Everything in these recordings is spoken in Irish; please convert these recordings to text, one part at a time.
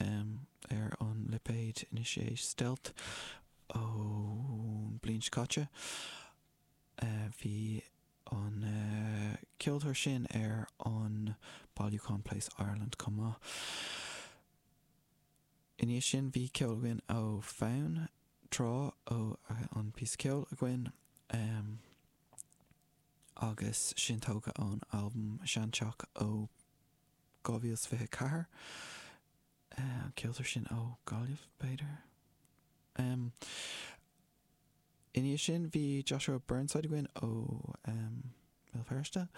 ar an lipéid na sé stealth ón bhliain seo caite. Bhí an ceoltóir sin ar an bailiúchán Place Ireland chomh maith. I ndiaidh sin bhí ceol againn ó Fonn Trá, ón píosa ceoil againn agus sin tógtha ón albam Seanteach ó 2024. An ceoltóir sin ó Ghaillimh, b'fhéidir? Ina dhiaidh sin bhí Joshua Burnside againn ó Bhéal Feirste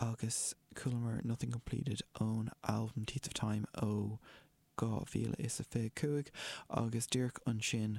agus chualamar Nothing Completed ón albam Teeth of Time ó 2025 agus díreach ansin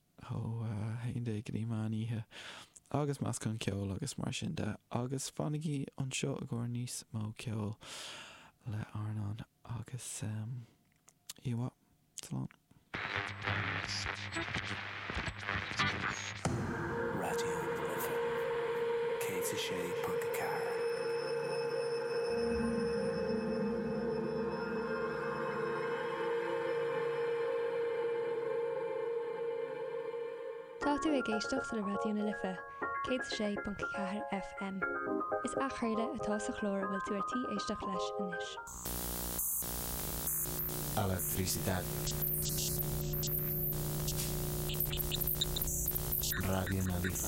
ó a haon déag go dtí meán oíche, agus meascán ceoil agus mar sin de, agus fanaigí anseo i gcomhair níos mó ceoil le RnaG, agus you what? Slán. Raidió na Life 106.4. Tá tú ag éisteacht le Raidió na Life, 106.4 FM. Is athchraoladh atá sa chlár a bhfuil tú ar tí éisteacht leis anois. Electricidad Raidió na Life.